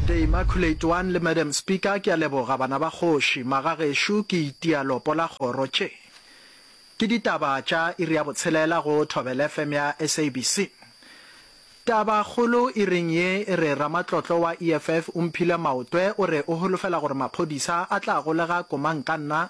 The Immaculate One le Madam Speaker, ke a leboga bana ba kgoši, maga gešo ke itia lopo la kgoro tše ke ditaba tša iri ya botshelela go Thobela FM ya SABC. Taba kgolo iring ye e re ramatlotlo wa EFF o mphile maotwe o re o holofela gore maphodisa a tla golega komankanna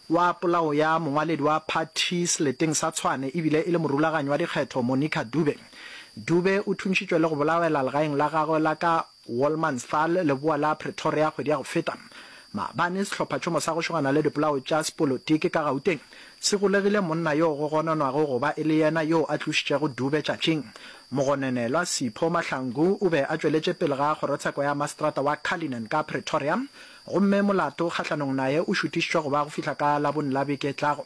wa polao ya mongwaledi wa phathi seleteng sa Tshwane ebile e le morulaganyi wa dikgetho Monica Dube. Dube o thuntšitšwe le go bolawela legaeng la gagwe la ka Wolmansthal, leboa la Pretoria, kgwedi ya go feta. Maabane sehlophatšhomo sa go šogana le dipolao tša sepolotiki ka Gauteng se golegile monna yoo go gononwago go ba e le yena yoo a tlošitšego Dube tšatšing. Mogononelwa Sipho Mahlangu o be a tšweletše pele ga kgorotsheko ya maseterata wa Cullinan ka Pretoria gomme molato kgahlanong naye o šutišitšwe go ba go fihla ka Labone la beke e tlago.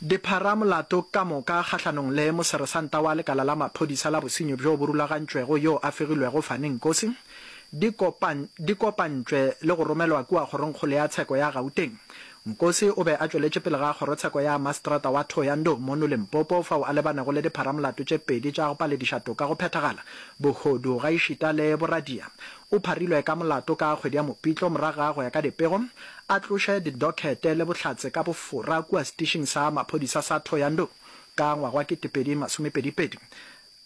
Dipharamolato ka moka kgahlanong le moseresanta wa lekala la maphodisa la bosenyi bjo bo rulagantšwego yo a fegilwego Fani Nkosi di kopan di kopantšwe le go romelwa kua kgorongkgolo ya tsheko ya Gauteng. Nkosi o be a tšweletše pele ga kgorotsheko ya mastrata wa Thohoyandou mono Limpopo fao a lebanego le dipharamolato tše pedi tša go palediša toka go phethagala, bohodu gaešita le boradia. O pharilwe ka molato ka kgwedi ya Mopitlo morago ga go ya ka dipego a tloše didokhete le bohlatse ka bofora kua setišing sa maphodisa sa Thohoyandou ka ngwaga wa ketepedi masomepedi pedi,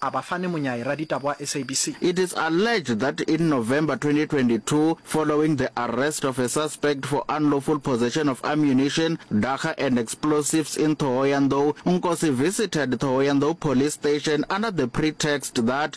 a ba fane monyai raditaba wa SABC. It is alleged that in November 2022, following the arrest of a suspect for unlawful possession of ammunition, dagga and explosives in Thohoyandou, Nkosi visited Thohoyandou Police Station under the pretext that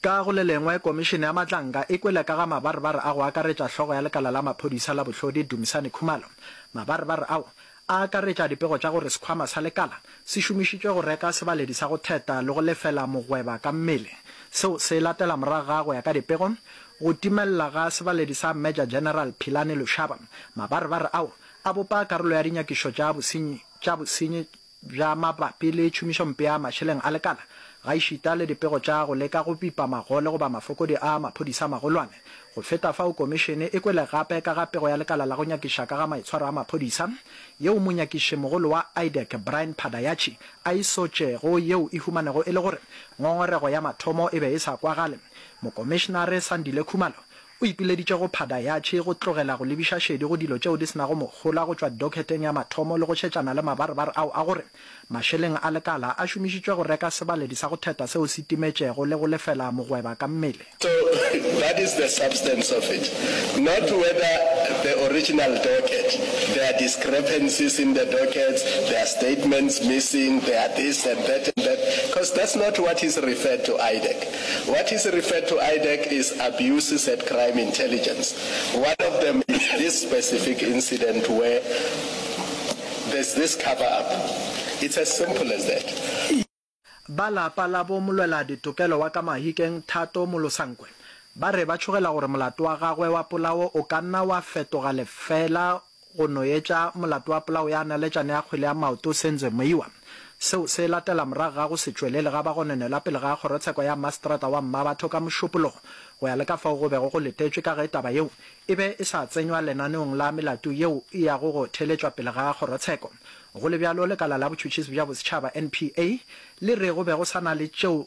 Ka go le lengwe, Komišene ya Matlanka e kwele ka ga mabarebare a go akaretša hlogo ya lekala la maphodisa la Bohlodi, Dumisani Khumalo. Mabarebare ao a akaretša dipego tša gore sekhwama sa lekala se šomišitšwe go reka sebaledi sa go theta le go lefela mogweba ka mmele, seo se latela morago ga go ya ka dipego, go timelela ga sebaledi sa Major General Philani Lushaba. Mabarebare ao a bopa karolo ya dinyakišo tša bosenyi tša bosenyi bja mabapi le tšhomišompe ya mašeleng a lekala, gaešita le dipego tša go leka go bipa magole goba mafokodi a maphodisa a magolwane. Go feta fao, Komišene e kwele gape ka ga pego ya lekala la go nyakiša ka ga maitshwaro a maphodisa, yeo monyakišimogolo wa IDAC, Brian Phadayachi, a e sotšego, yeo e humanego e le gore ngongorego ya mathomo e be e sa kwagale. Mokomišenare Sandile Khumalo O ipileditše go phada yatšhe, go tlogela go lebiša šedi go dilo tšeo di se nago mohola go tšwa dokheteng ya mathomo le go šetšana le mabarebar ao a gore mašeleng a lekala a šomišitšwe go reka sebaledi sa go theta seo se timetšego le go lefela mogweba ka mmele. So that is the substance of it, not whether the original docket, there are discrepancies in the dockets, there are statements missing, there are this and that and that, cos that's not what is referred to IDEC. What is referred to IDAC is Abuses at Crime Intelligence. One of them is this specific incident where there's this cover up. It's as simple as that. Ba lapa la bo molwela ditokelo wa ka Mahikeng, Thato Molosankwe, ba re ba tšhogela gore molato wa gagwe wa polao o ka nna wa fetoga lefeela Go no etša molato wa polao ya naletšane ya kgwele ya maoto Senzo Meyiwa, seo se latela morago ga go se tšwelele ga bagononelwa pele ga kgorotsheko ya Mmaseterata wa Mmabatho ka Mošupologo, go ya le ka fao go bego go letetšwe ka ge taba yeo e be e sa tsenywa lenaneong la melato yeo e yago go theeletšwa pele ga kgorotsheko. Go le bjalo, lekala la botšhotšhisi bja bosetšhaba, NPA, le re go be go sa na le tšeo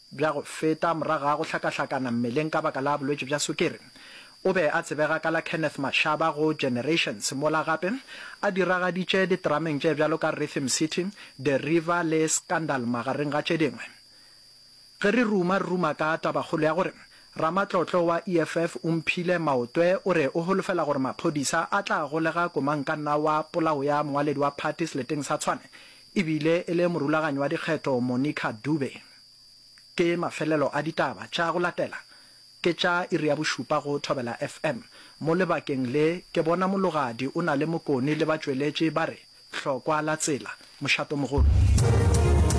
Bja go feta, morago ga go hlakahlakana mmeleng ka baka la bolwetši bja sukiri, o be a tsebega ka la Kenneth Mashaba go Generations, mola gape a diragaditše diterameng tše bjalo ka Rhythm City, The River le Scandal magareng ga tše dingwe. Ge re ruma-ruma ka tabakgolo ya gore ramatlotlo wa EFF o mphile maotwe o re o holofela gore maphodisa a tla golega komangkanna wa polao ya mongwaledi wa phathi seleteng sa Tshwane, E bile e le morulaganyi wa dikgetho Monica Dube. Ke mafelelo a ditaba tša go latela ke tša iri ya bošupa go Thobela FM. Mo lebakeng le ke bona Mologadi o na le Mokoni le batšweletši ba re Hlokwa la tsela, Mošatomogolo.